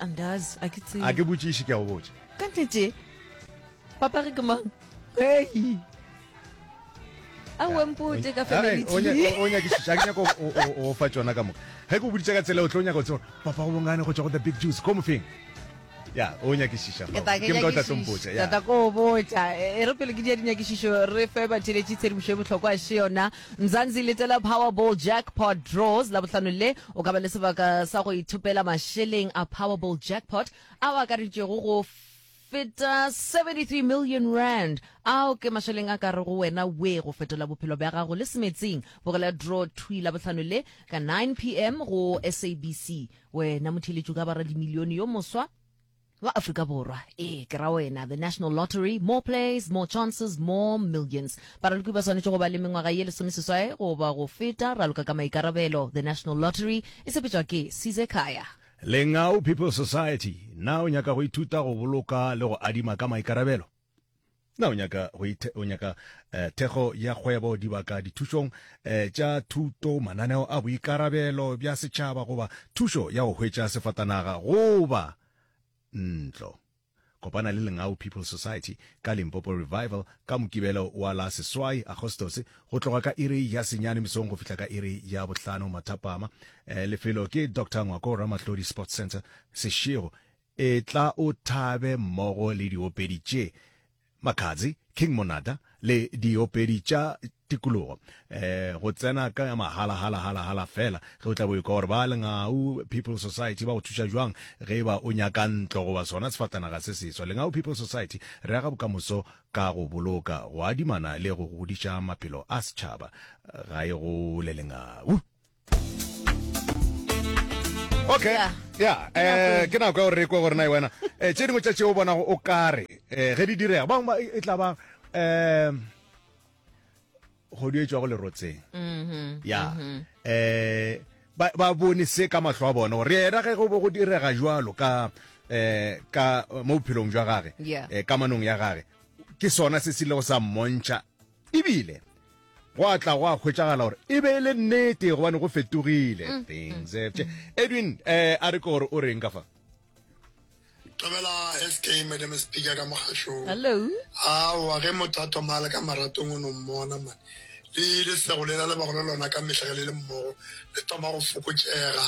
andazi a ke tsebe a ke botšiši ke a go botša ka nnete papa re ke mang hei a o mpote ka family o nyakišiša ke nyako o fa tsona ka moka ge ke o boditse ka tsela o tlo nyaka o tseba papa go bongane go tswa go the big juice ko mofeng ya o nyakišiša ke mka o tla tlompotša ya tata ko botša e re pele ke dia dinyakišišo re fe batheletši tshedimošo e bohlokwa se yona Mzansi Little Powerball Jackpot Draws, Labohlano le, o ka ba le sebaka sa go ithopela mašeleng a Powerball Jackpot ao a akareditšego go feta 73 million rand. Ao ke mašeleng a ka rego wena wee go fetola bophelo bja gago le semetsing. Bogela draw thwi Labohlano le ka 9 pm go SABC. Wena motheeletši o ka ba radimilione yo moswa. Ba Afrika Borwa, ee, ke ra wena, the National Lottery, more plays, more chances, more millions. Baraloki ba swanetše go ba le mengwaga ye lesomeseswae goba go feta, raloka ka maikarabelo. The National Lottery e sepetšwa ke Size Khaya. Lengau People's Society, Na o nyaka go ithuta go boloka le go adima ka maikarabelo? Na o nyaka go ithe, o nyaka eh, thekgo ya kgwebo dibaka dithušong eh, tša thuto mananeo a boikarabelo bja setšhaba goba thušo ya go hwetša sefatanaga goba ntlo? Kopana le Lengau People Society ka Limpopo Revival ka Mokibelo wa la seswai Agostose go tloga ka iri ya senyane mesong go fihla ka iri ya bohlano mathapama. Eh, lefelo ke Dr Ngwako Ramahlodi Sports Centre Seshego Etla o thabe mmogo le diopedi tše, Makhadzi, King Monada, le diopedi tša tikologo. Go tsena ka mahala, hala, hala, hala fela, ge o tla bo ekwa gore ba Lengau People Society ba go thuša jwang ge eba o nyaka ntlo goba sona sefatanaga se seswa. Lengau People Society, re aga bokamoso ka go boloka, go adimana le go godiša maphelo a setšhaba. Ga e gole Lengau! okay yeah. ya eh ke nako ya gore re kwe gore na e wena eh tse dingwe tsa tse o bona o kare eh ge di direga bang ba e tla ba eh go di etswa go lerotseng mhm, ya mhm. eh ba ba bone se ka mahlo a bona gore yena ge go bo go direga jwalo ka eh ka mo bophelong jwa gage eh kamanong ya gage ke sona se se ile go sa mmontšha E bile gwa tla gwa hwetšagala gore e be e le nnete gobane go fetogile mm. things have changed edwin eh a re ke gore o reng ka fa tobela sk madam speaker ka mogašong hello aowa ge motho a thoma a le ka maratong o no mmona mane le lesego lela le bago le lona ka mehla ge le le mmogo le thoma go fokotšega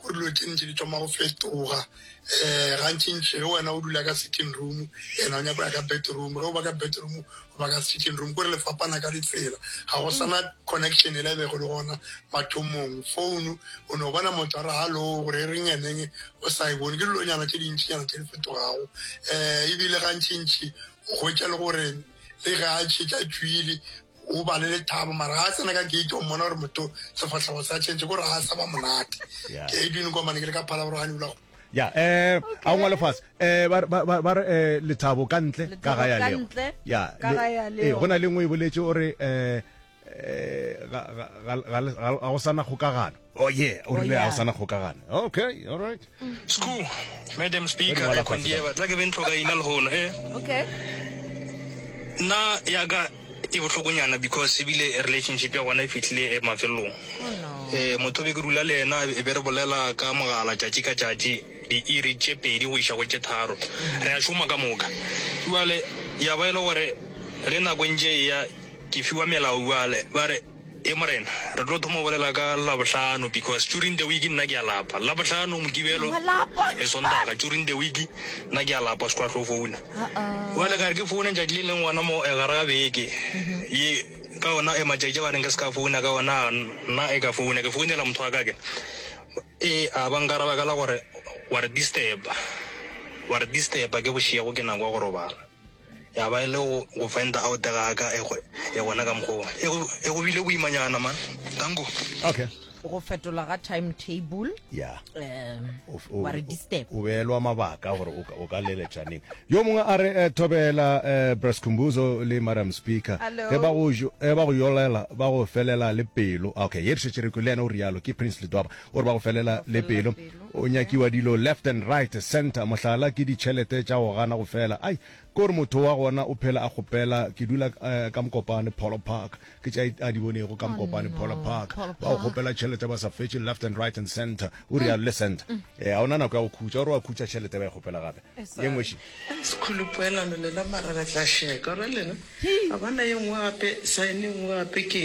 go dilo tše ntši di thoma go fetoga um gantšintši ge wena o dula ka sitting room ena o nyako ya ka bedroom ge o ba ka bedroom Ba ka sitting room kore le fapana ka ditsela, ga go sana connection yela e bego e le gona mathomong. Phone o no bona motho a re hallo gore e reng eneng o sa e bone. Ke dilonyana tše dintšinyana tše di fetogago um ebile gantšintši o hwetša le gore le ge a šetše a tšwile o ba le lethabo mara ga a tsena ka gate o mmona gore motho sefahlego sa change kore ga a sa ba monate. Ke Edwin Nkomane ke le ka Phalaborwa Honeyville. ya eh a ngwa le fase eh ba ba ba re eh lethabo ka ntle ka ga ya leo ya eh gona le ngwe e boletse o re eh eh ga ga ga ga go sana kgokagano Oh yeah, o rile a sana kgokagana. Okay, all right. School, Madam Speaker, e khondieba tla ke bentlo ga ina le hona. Eh. Okay. Na ya ga E bohlokonyana because ebile relationship ya gona e fihlile mafelelong. Eh, motho be ke dula le yena e be re bolela ka mogala tšatši ka tšatši diiri tše pedi go iša go tše tharo. Re a šoma ka moka. Bjale ya ba e le gore ge nako e ntše e ya ke fiwa melao bjale ba re, Ee Morena, re tlo thoma go bolela ka Labohlano because during the week nna ke a lapa. Labohlano, Mokibelo le Sontaga during the week nna ke a lapa. Squad tlo founa bjale ka re ke foune tšatši le leng gona mo gare ga beke ye ka yona e matšatši a ba reng ke se ka founa ka ona a nna e ka founa ke founela motho wa ka ke e a ba nkaraba ka la gore wa re disturb-a, wa re disturb-a ke bošego ke nako ya go robala. ya ba e le go go fenda out ga ka e gona ka mokgoo e go e go bile boimanyana ma tango okay go fetola ga time table ya um wa re disturb o beelwa mabaka gore o ka leletšaneng yo mongwe a re eh, thobela eh, brascumbuzo le madam speaker ge ba go eh, ba go yolela ba go felela le pelo okay ye re šetše re kwe le yena o rialo ke prince ledwaba gore ba go felela le pelo O nyakiwa dilo left and right, centre, mohlala ke ditšhelete tša go gana go fela. Ai, ke gore motho wa gona o phela a kgopela, ke dula ka Mokopane, Polo Park, ke tša a di bonego ka Mokopane, Polo Park, ba go kgopela tšhelete ba sa fetše left and right and centre, o realo le centre. Ee, ga o na nako ya go khutša, o re wa khutša tšhelete ba e kgopela gape, ye nngwe še. Sekgole poelano lela mara re tla šeka, o realo ena? Ga ba na ye nngwe gape, sign ye nngwe gape ke.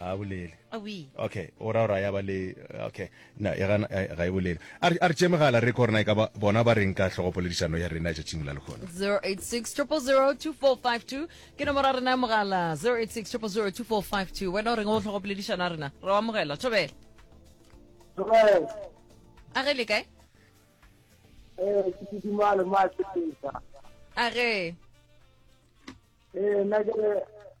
a bolele okay o ra ra ya ba le okay na e gana eh, ga e bolele a re tše megala re korna e ka bona ba reng ka tlhogopoledišano ya rena ja tšing la lekgona 0860002452 ke nomoro ya rena ya mogala 0860002452 wena o reng o tlhogopoledišano ya rena re wa mogela thobela a ge le kae eh ke kidimalo ma tsepetsa a ge eh na ke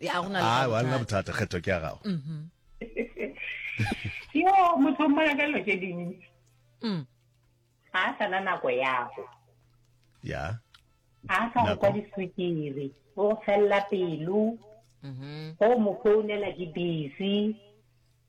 ya go na le a nna bothata kgetho ke ya gago yo motho o mmona ka dilo tse dintsi mm. ga a sana nako yago ya ga a sa go kwa diswikiri o go felela pelo mm-hmm. go mo founela ke busy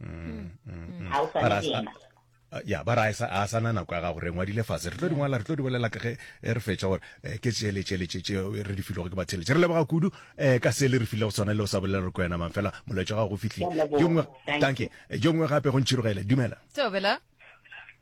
mm, mm, ga o swane le yena ya ba ra a sa na nako ya gago re ngwadile fatshe re tlo dingwala re tlo di bolela ka ge eh, re fetša gore eh, ke tšele tšele tšetše eh, re di filego ke batheletše re leboga kudu um ka se le re file go tshwana le o sa bolela re ko yena mang fela molaetša gago go fitlhile yo nngwe tanke yo nngwe gape go ntšhirogele dumela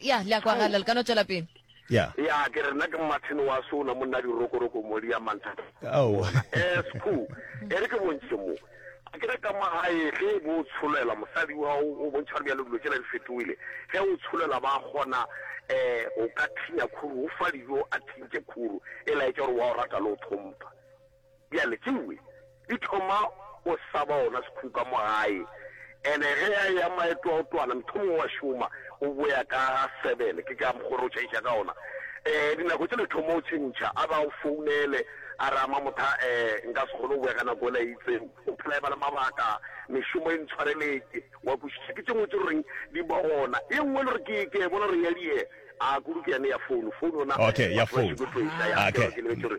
ya le a kwagala le ka no tšwela pele ya ya ke re nna ke mmathene wa sona monna dirokoroko modi ya manthata Ao. esq e re ke bontšhe mo a kere ka magae ge e bo o tsholela mosadi wa o o bontšha gore bjalo dilo tsela di fetogile ge o tsholela ba kgona um o ka thinya khuru o fa dijo a thintše khuru e laetša gore wa o rata le o tlhompha Bjale tšewe di thoma go saba ona sekhuka mo gae, ene ge a ya maetoaotwana mthomongwe wa šoma o boya ka ga seven, ke ka mokgore o tšhaiša ka ona. Um dinako tšele thoma o tšhentšha, a ba o founele a re, ama motha um nka se kgone go boya ka nako ela e itseng, o phela eba le mabaka, mešomo e ntshwareletse, wa kwešiša. Ke tšengwe tše lo reng di ba gona, ye nngwe le re ke ke bona re ya die, a kudu ke yane ya founu, founu yona batho ba šiko tlo e šaya, ke re ke lebetše gore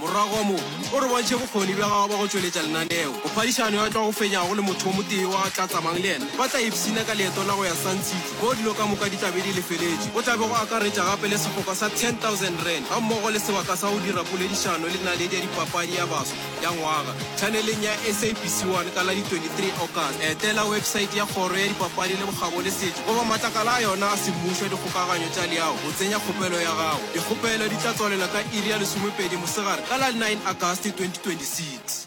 Morago ga moo, o re bontšhe bokgoni bja gagwe bja go tšweletša lenaneo. Mophadišano yo a tlago fenyago le motho o motee yo a tla tsamang le yena ba tla ipshina ka leeto la go ya Sun City moo dilo ka moka di tla be di lefeletšwe. O tla be go akaretša gape le sefoka sa R10,000 gammogo le sebaka sa go dira poledišano le naledi ya dipapadi ya baswa ya ngwaga tšhaneleng ya SABC 1 ka la di 23 August. Etela wepesaete ya Kgoro ya Dipapadi le Bokgabo le Setšo goba matlakala a yona a semmušo a dikgokaganyo tša leago. Tsenya kgopelo ya gago. Dikgopelo di tla tswalela ka iri ya lesomepedi mosegare ka la 9 Agasti 2026.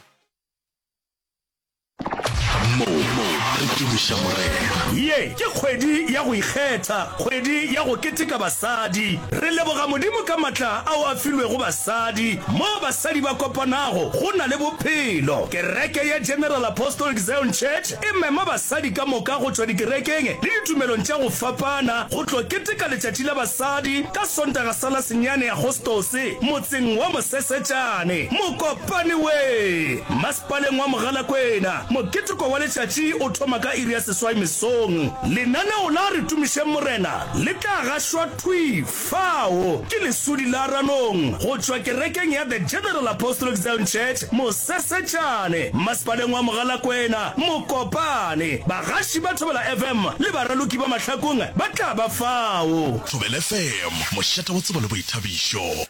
Mo re tumiša Morena. Ye ke kgwedi ya go ikgetha, kgwedi ya go keteka basadi. Re leboga Modimo ka matla ao a filwego basadi. Moo basadi ba kopanago, go na le bophelo. Kereke ya General Apostolic Zion Church E mema basadi ka moka go tšwa dikerekeng le ditumelong tša go fapana go tlo keteka Letšatši la Basadi ka Sontaga sa la senyane Agostose motseng wa Mosesetšane, Mokopane-wee. Masepaleng wa Mogalakwena, moketeko wa letšatši o thoma ka iri ya seswai mesong. Lenaneo la Re Tumišeng Morena le tla gašwa thwi Fao ke leswudi la Ranong go tšwa kerekeng ya The General Apostolic Zion Church, Mosesetšane, Mmasepaleng wa Mogalakwena, Mokopane. Bagaši ba Thobela FM le baraloki ba mahlakong ba tla ba fao. Thobela FM, mošate wa tsebo le boithabišo.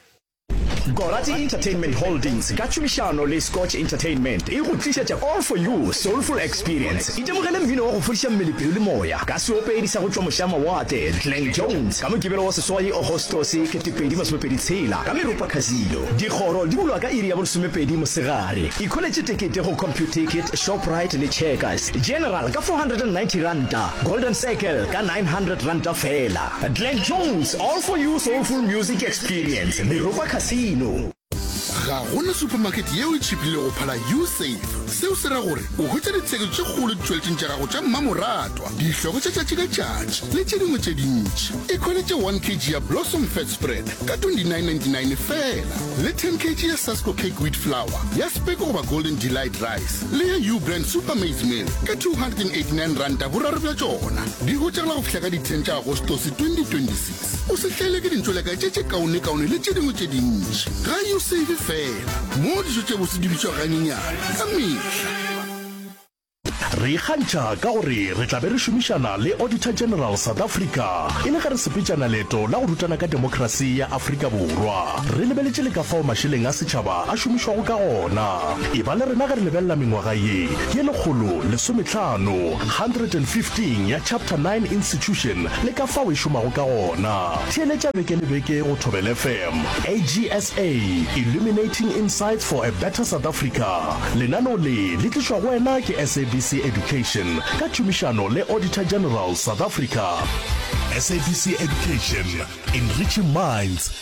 Gorati Entertainment Holdings ka tšhomišano le Scotch Entertainment e go tlišetša All For You Soulful Experience. Itemogele mmino wa go fodiša mmele, pelo le moya ka seopedi sa go tšwa mošamawatle, Glen Jones, ka Mokibelo wa seswai, Agostose, 2026, ka Meropa Casino. Dikgoro di bulwa ka iri ya bolesomepedi mosegare. Ikholetše tekete go Computicket, Shoprite le Checkers. General ka R490, Golden Circle ka R900 feela. Glen Jones, all for you soulful music experience, Meropa Casino. Ga go na supamakete yeo e tšhipilego go phala U-Save. Seo se ra gore o hwetša ditsheko tše kgolo ditšweletšeng tša gago tša mmamoratwa, dihloko tša tšatši ka tšatši le tše dingwe tše dintši. Ikhweletše 1 kg ya Blossom Fat Spread ka 29.99 fela le 10 kg ya Sasko Cake Wheat Flour ya Speko goba Golden Delight Rice. le ya Ubrand Super Maize Meal ka R289 boraro bja tšona. Di hotšegela go fihla ka di 10 tša Agostose 2026. O se hlaele ke dintšolekae tše tše kaonekaone le tše dingwe tše dintši. Ga yo save fela, moo dijo tše bose di bitšwa ganyenyane ka mehla. Re ikgantšha ka gore re tla be re šomišana le Auditor General South Africa e le ge re sepetšana leeto la go rutana ka demokrasi ya Afrika Borwa. Re lebeletše le ka fao mašeleng a setšhaba a šomišwago ka gona. Eba le rena ge re lebelela mengwaga ye ye lekgolo lesometlhano, 115, ya Chapter 9 Institution le ka fao e šomago ka gona. Theeletša beke le beke go Thobela FM, AGSA, Illuminating Insights for a Better South Africa. Lenaneo le le tlišwa go wena ke SABC Education ka tšhomišano le Auditor General, South Africa. SABC Education, Enriching Minds.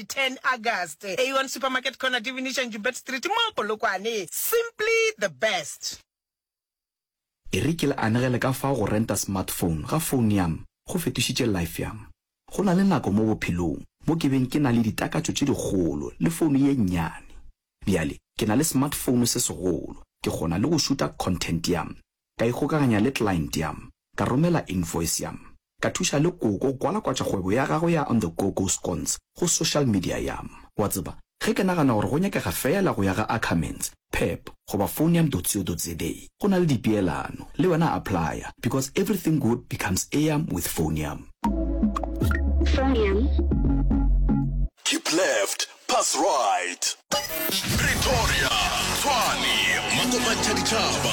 10 August, Aeon Supermarket Corner, Divination Joubert Street, mo Polokwane. Simply the best! E re ke le anegele ka fao go renta smartphone ga founo ya me go fetošitše life ya me. Go na le nako mo bophelong mo ke beng ke na le ditakatšo tše dikgolo le founo ye nnyane. Bjale ke na le smartphone se segolo, ke kgona le go šuta content ya me Ka ikgokaganya le client ya m, ka romela invoice ya m, ka thuša le Koko kwalakwatša kgwebo ya gagwe ya On The Go Go Scones go social media ya m. Wa tseba, ge ke nagana gore go nyakega feela go ya ga Ackermans, Pep, goba phone ya m-co-za, go na le dipeelano, le wena applya, because everything good becomes eam with phone ya m. Phone ya m. Keep left, pass right. Pretoria, Tshwane, Makopanthaditšhaba.